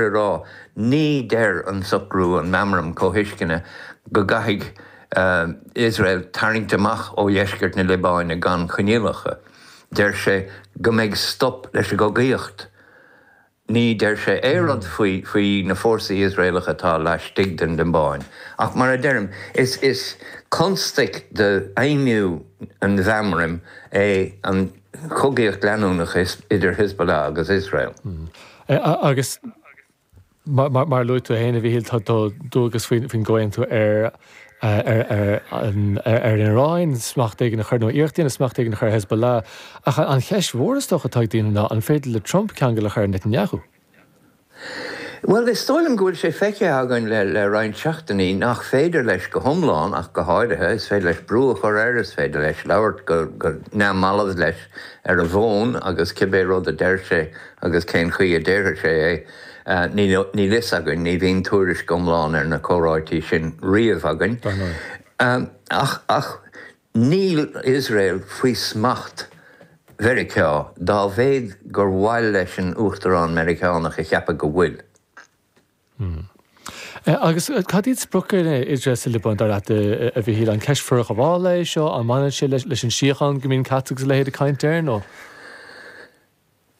a rá, ní deir an socrú, an meamram comhthuisceana, go gcaithfidh Iosrael tarraingt amach ó dheisceart na Liobáine gan choinníollacha. Deir sé go mbeidh stop leis an gcogaíocht. Ní deir sé aon rud faoi na fórsaí Iosraelacha atá laistigh den Liobáin. Ach mar a deirim, is constaic d'fheidhmiú an mheamraim é an chogaíocht leanúnach idir Hezbollah agus Iosrael. Agus mar a luaigh tú féin, a Mhíchíl, tá dualgas faoin gcomhaontú ar an Iaráin smacht éigin a chur, nó iarracht a dhéanamh smacht éigin a chur ar Hezbollah. Ach an cheist mhór is dócha atá ag daoine ná, an féidir le Trump ceangal a chur ar Netanyahu? Bhuel, is dóigh liom go bhfuil sé feicthe againn le roinnt seachtainí nach féidir leis go hiomlán ach go háirithe. Is féidir leis brú a chur air, is féidir leis labhairt go neamhbhalbh leis ar an bhfón agus cibé rud a deir sé, Agus cén chaoi a déarfadh sé é? Níl a fhios againn, ní bhíonn tuairisc iomlán ar na comhráití sin riamh againn. Dar ndóigh. Ach níl Iosrael faoi smacht Mheiriceá, dá mhéad gur mhaith leis an Uachtarán Meiriceánach a cheapadh go bhfuil. Agus cad iad spriocanna Iosrael sa Liobáin, dar leat, a Mhichíl? An ceist forghabhála é seo? An mbaineann sé leis an síocháin go mbíonn Katz agus a leithéid ag caint air, nó?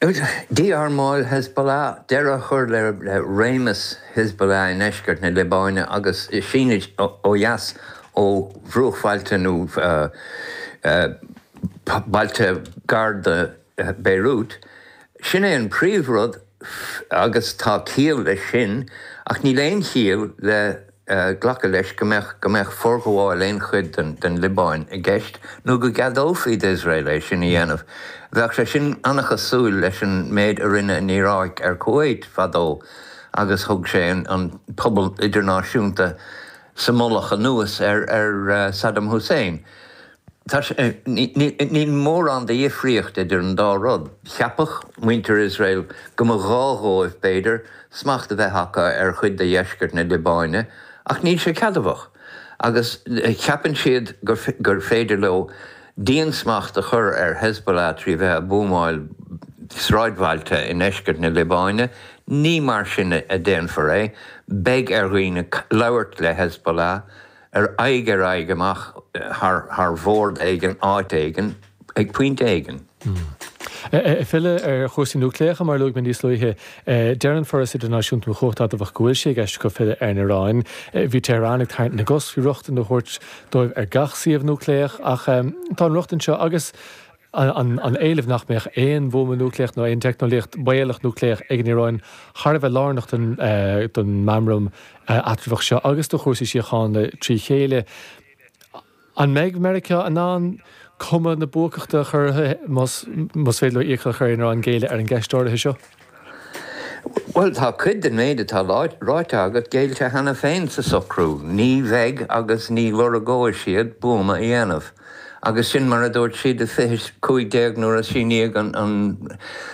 Dí-armáil Hezbollah, deireadh a chur le réimeas Hezbollah i ndeisceart na Liobáine agus is é sin ó dheas ó bhruachbhailte nó bailte gar do Beirut, sin é an príomhrud agus tá ciall leis sin ach níl aon chiall le glacadh leis go mbeadh go mbeadh forghabháil aon chuid den Liobáin i gceist nó go gceadófaí d'Iosrael é sin a dhéanamh. Bheadh sé sin an-chosúil leis an méid a rinne an Iaráic ar Kuwait fadó agus thug sé sin an pobal idirnáisiúnta sa mullach anuas ar Saddam Hussein. Tá sé, níl mórán de dhifríocht idir an dá rud. Cheapfadh muintir Iosrael go mba ghá dhóibh, b'fhéidir, smacht a bheith acu ar chuid de dheisceart na Liobáine, ach níl sé ceadmhach. Agus cheapann siad gur féidir leo diansmacht a chur ar Hezbollah trí bheith a' buamáil sráidbhailte i ndeisceart na Liobáine. Ní mar sin a déanfar é. Beidh ar dhaoine labhairt le Hezbollah. ar aghaidh ar aghaidh amach, thar, thar bhord éigin, áit éigin, ag pointe éigin. Ag filleadh ar chúrsaí núicléacha, mar a luaigh mé níos luaithe, deir an Foras Idirnáisiúnta um Chumhacht Adamhach go bhfuil sé i gceist acu filleadh ar an Iaráin. Bhí Tehran ag tarraingt na gcos faoi rochtain a thabhairt dóibh ar gach suíomh núicléach ach tá an rochtain seo agus, an éileamh nach mbeadh aon bhuama núicléach nó aon teicneolaíocht bhaolach núicléach ag an Iaráin thar a bheith lárnach don mheamram eatramhach seo agus do chúrsaí síochána trí chéile. An mbeidh Meiriceá in ann cuma na buacachta a chur orthu más féidir leo iachall a chur ar an Iaráin géilleadh ar an gceist áirithe seo? Bhuel, tá cuid den mhéid atá ráite agat géillte cheana féin sa socrú, ní bheidh agus ní lorgóidh siad buama a dhéanamh. Agus sin mar a dúirt siad i 2015 nuair a síníodh an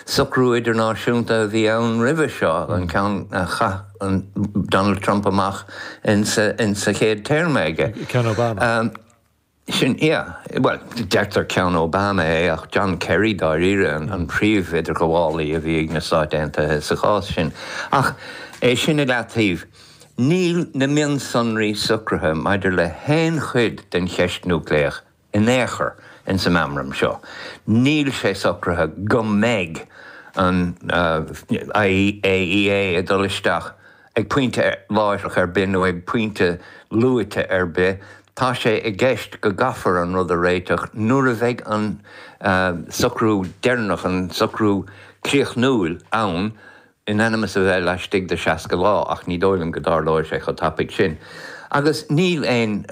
socrú idirnáisiúnta a bhí ann roimhe seo, an ceann a chaith Donald Trump amach in sa chéad téarma aige. Ceann Obama. Sin ea. Bhuel, deirtear ceann Obama é, ach John Kerry, dáiríre, an príomh-idirghabhálaí a bhí ag na Stáit Aontaithe sa chás sin. Ach é sin i leataobh, níl na mionsonraí socraithe maidir le haon chuid den cheist núicléach in aon chor insa meamram seo. Níl sé socraithe go mbeidh an IAEA ag dul isteach, Ag pointe láithreach ar bith nó ag pointe luaite ar bith, tá sé i gceist go gcaithfear an rud a réiteach nuair a bheidh an socrú deireanach, an socrú críochnúil ann, in ainm is a bheith laistigh de 60 lá, ach ní dóigh liom go dtarlóidh sé chomh tapaidh sin. Agus níl aon.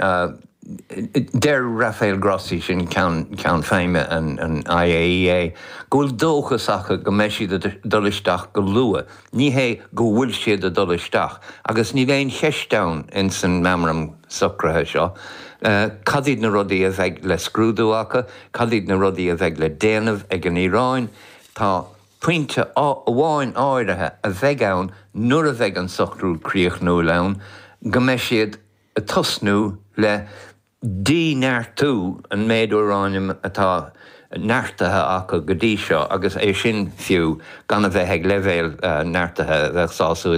Deir Rafael Grossi, sin ceann feadhna an IAEA, go bhfuil dóchas acu go mbeidh siad ag dul isteach go luath. Ní hé go bhfuil siad ag dul isteach, agus níl aon cheist ann in san Meamram Socraithe seo, cad iad na rudaí a bheidh le scrúdú acu, cad iad na rudaí a bheidh le déanamh ag an Iaráin. Tá pointe amháin áirithe a bheidh ann nuair a bheidh an socrú críochnúil ann, go mbeidh siad ag tosnú le. díneartú an méid úráiniam atá neartaithe acu go dtí seo agus é sin, fiú, gan a bheith ag leibhéal neartaithe a bheadh sásúil